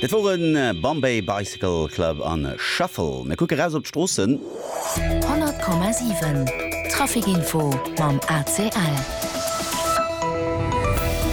Et woren Bombay Bicycle Club an Shuffle. Mir kucke raus op d'Stroossen. 100,7 Trafic Info mam ACL.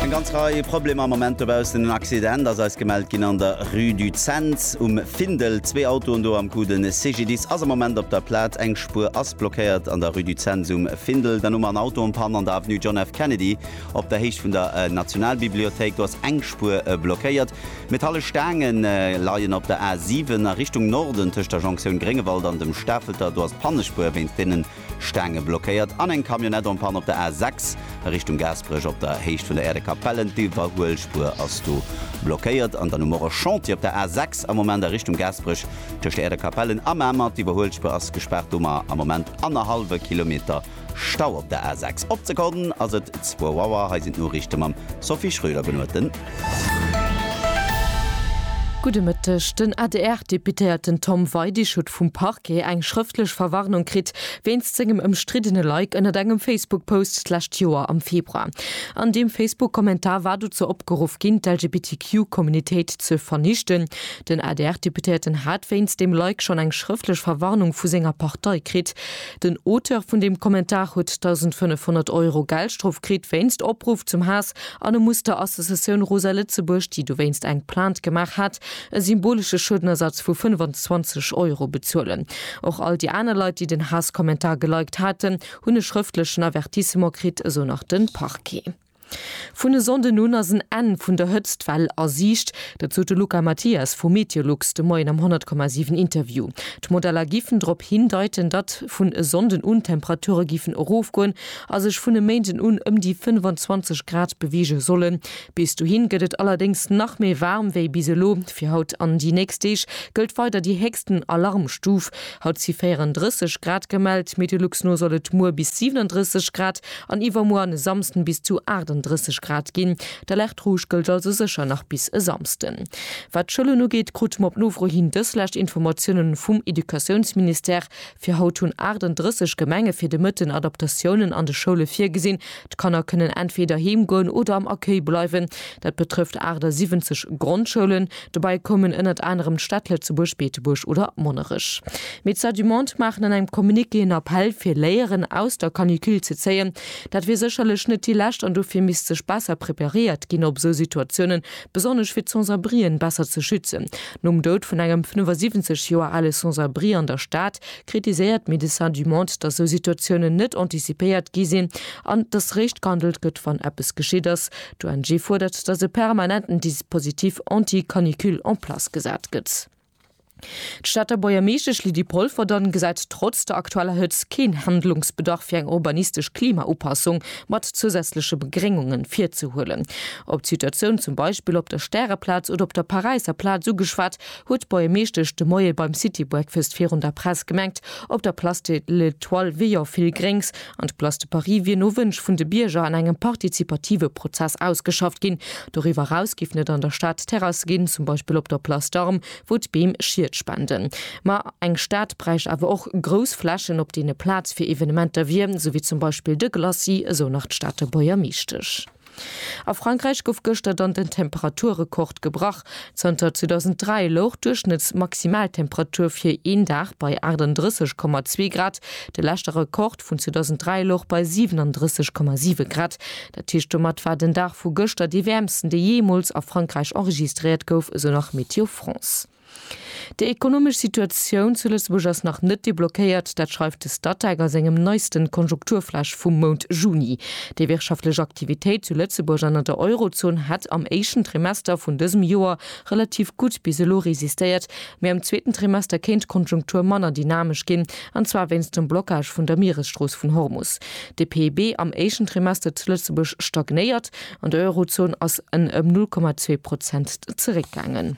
Eng ganz Rei Problemer am Moment dobaussen. En Accident ass eis gemellt ginn an der Rue du Cents um Findel. Zwee Autoen do am Coup. De CGDIS ass am Moment op der Plaz. Eng Spuer ass blockéiert an der Rue du Cents um Findel. Dann hu mer en Auto en Panne an der Avenue John F. Kennedy. Op der Héicht vun der Nationalbibliothéik gouf eng Spuer blockéiert. Metalle Staange leien op der A 7 a Richtung Norden tëscht der Jonktioun Gréngewald an dem Stafelter. Do ass d'Pannespuer wéinst deene Staange blockéiert. An eng Camionnette en panne op der A 6 a Richtung Gaasperech op der Héicht vun der Aire de Capellen. D'Iwwerhuelspuer ass do blockéiert. An dann hu mer och e Chantier op der A 6 am Moment a Richtung Gaasperech tëscht der Aire de Capellen a Mamer. D'Iwwerhuelspuer ass gespaart. Do hu mer am Moment annerhallwe Kilometer Stau op der A6. Op d'Sekonn ass et zwou Auer. Hei sinn d'Noriichte mam Sophie Schröder-Benuerten. Gudde Mëtteg. Den ADR-Deputéierten Tom Weidig huet vum Parquet eng schrëftlech Verwarnung kritt, wéinst sengem ëmstriddene Like ënnert engem Facebook-Post d'lescht Joer am Februar. An deem Facebook-Kommentar war dozou opgeruff ginn, d'LGBTQ-Communitéit ze vernichten. Den ADR-Deputéierten hat wéinst deem Like schonn eng schrëftlech Verwarnung vu senger Partei kritt. Den Auteur vun deem Kommentar huet 1.500 Euro Geldstrof kritt wéinst Opruff zum Haass an e muss der Associatioun Rosa Lëtzebuerg, déi dowéinst eng Plainte gemaach hat, e symbolesche Schuedenersatz vu 25 Euro bezuelen. Och all déi aner Leit, déi den Haasskommentar geliked haten, hunn e schrëftlechen Avertissement kritt, esou nach de Parquet. Vun e Sonnden un ass en Enn vun der Hëtztwell a Siicht. Dat sot de Luca Mathias vu Meteolux de Moien am 100,7 Interview. D'Modeller giffen drop hindeiten, datt vun e Sonnden un d'Temperature giffen erofgoen a sech vun e Méinden un ëm déi 25 Grad beweege sollen. Bis dohi gëtt et allerdéngs nach méi waarm wéi bis elo. Fir haut an déi nächst Deeg gëllt weider déi héchsten Alarmstuf. Haut si 34 Grad gemellt. Meteolux no soll et muer bis 37 Grad An iwwermuer an e Samsden bis zu 38 Grad ginn. D'Alerte rouge gëllt also sécher nach bis e Samsden. Wat d'Schoulen ugeet, krute mer op Nofro hin dës lescht Informatiounen vum Educatiounsministère. Fir haut hunn 38 Gemenge fir de Mëtten Adaptatiounen an de Schoule virgesinn. D'Kanner kënnen entweder heem goen oder am Accueil bleiwen. Dat betrëfft 78 Grondschoulen. Dobei koumen ënnert anerem d'Städt Lëtzebuerg, Beetebuerg oder Monnerech. D'Médecins du Monde maachen an engem Communiqué en Appell, fir Léieren aus der Canicule ze zéien. Dat wier sécherlech net déi lescht an dofir misst sech besser preparéiert ginn, op esou Situatiounen, besonnesch fir d'Sans-abrien besser ze schützen. Nom Doud vun engem 75 Joer ale Sans-abri an der Stad kritiséiert Médecins du Monde, dass esou Situatiounen net antizipéiert gi sinn an dass réischt gehandelt gëtt, wann eppes geschitt ass. D'ONG fuerdert, datt e permanenten Dispositif anti-canicule en place gesat gëtt. D'Stater Buergermeeschtesch Lydie Polverdon gesäit trotz der aktueller Hëtzt keen Handlungsbedarf fir eng urbanistesch Klimaupassung mat zousätzleche Begréngungen virzehuelen. Op d'Situatioun zum Beispill op der Stäreplaz oder op der Paräisser Plaz ugeschwat, huet d'Buergermeeschtesch de Moie beim City Breakfast virun der Press gemengt, op der Place de l'Etoile wier jo vill Gréngs, An d'Place de Paris wier no Wënsch vun de Bierger an engem partizipative Prozess ausgeschafft ginn. Doriwwer eraus giff net an der Stad Terrasse ginn, zum Beispill op der Place d'Armes, wou d'Beem Schied spenden. Ma eng Stad bräicht awer och grouss Flächen, op deene Plaz fir Evenementer wier, sou wéi zum Beispill de Glacis, esou nach d'Stater Buergermeeschtesch. A Frankräich gouf gëschter dann den Temperaturrekord gebrach. Zanter 2003 louch d'Duerchschnëttsmaximaltemperatur fir een Dag bei 38,2 Grad. De leschte Rekord vun 2003 louch bei 37,7 Grad. Dat heescht, domat war den Dag vu gëschter dee wäermsten, dee jeemools a Frankräich enregistréiert gouf, esou nach Météo France. Déi ekonomesch Situatioun zu Lëtzebuerg ass nach net deblockéiert. Dat schreift de Statec a sengem neisten Konjunkturflash vum Mount Juni. Déi wirtschaftlech Aktivitéit zu Lëtzebuerg an an der Eurozon hätt am éischten Trimester vun dësem Joer relativ gutt bis elo resistéiert, mee am zweeten Trimester kéint d'Konjunktur manner dynamesch ginn, an zwar wéinst dem Blockage vun der Mieresstrooss vun Hormus. De PIB am éischten Trimester zu Lëtzebuerg stagnéiert, an der Eurozon ass en ëm 0,2 Prozent zeréckgaangen.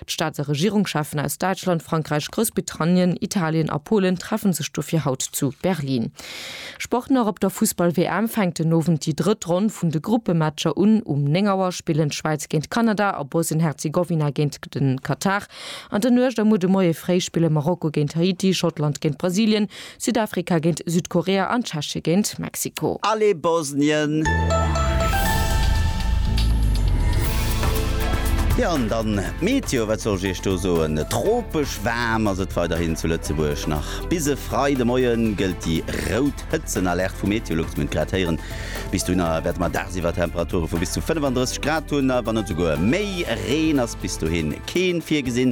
D'Staats a Regierungscheffen aus Däitschland, Frankräich, Groussbritannien, Italien a Polen treffe sech dofir haut zu Berlin. Sport nach, Op der Fussball-WM fänkt den Owend déi drëtt Ronn vun de Gruppematcher un. Um 9 Auer spillen d'Schwäiz géint Kanada a Bosnien-Herzegowina géint den Katar. An der Nuecht a muer de Moie fréi spille Marokko géint Haiti, Schottland géint Brasilien, Südafrika géint Südkorea an Tschechie géint Mexiko. Allez Bosnien! Jo an dann d'Meteo, wat soll ech iech do soen? Tropesch waarm ass et weiderhin zu Lëtzebuerg. Nach bis e Freidemoien gëllt déi rout Hëtzenalerte vu Meteolux. Mir hunn et grad héieren. Bis dohinner wäerte mer dagsiwwer Temperature vu bis zu 35 Grad hunn a wann net esouguer méi. Reen ass bis dohin kee virgesinn.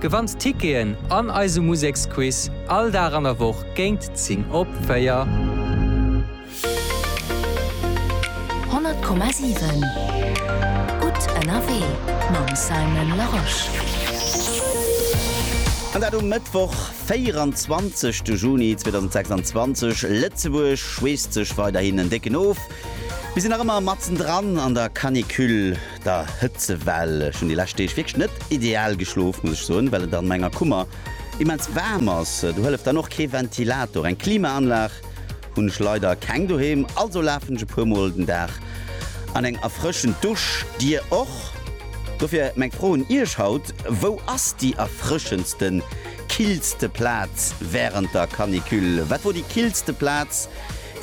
Gewannt Ticketen an eise Museksquiz all Dag an der Woch géint 10 op 4. 100,7 Gutt ënnerwee mam Simon Larosche. An dat um Mëttwoch, 24 de Juni 2026. Lëtzebuerg schweesst sech weiderhin en décken of. Mir sinn nach ëmmer matzen dran an der Canicule. der Hëtzewell. Ech hunn déi lescht Deeg wierklech net ideal geschlof, muss ech soen, well et an menger Kummer immens waarm ass. Do hëlleft dann och kee Ventilator. Eng Klimaanlag hunn ech leider keng doheem, also lafen ech e puer Mol den Dag an eng erfrëschend Dusch. Dir och? Dofir meng Fro un Iech haut, Wou ass déi erfrëschendste, killste Plaz wärend der Canicule? Wat wor déi killste Plaz,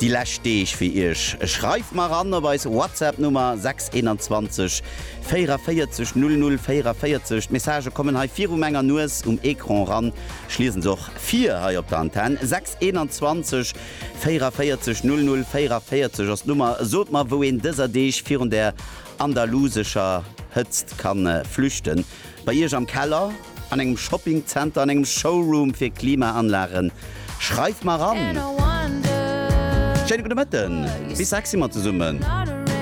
déi lescht Deeg fir Iech. Schreift mer eran op eis WhatsApp Nummer 621 44 00 44. D'Messagë kommen hei viru menger Nues um Ecran eran. Ech liesen se och vir hei op der Antenn. 621 44 00 44 ass d'Nummer. Sot mer, wou een dëser Deeg virun der andalusescher Hëtzt kann flüchten. Bei Iech am Keller? An engem Shopping Center, an engem Showroom fir Klimaanlagen? Schreif mer an! Schéine gudde Mëtten, bis sechs si mer zesummen.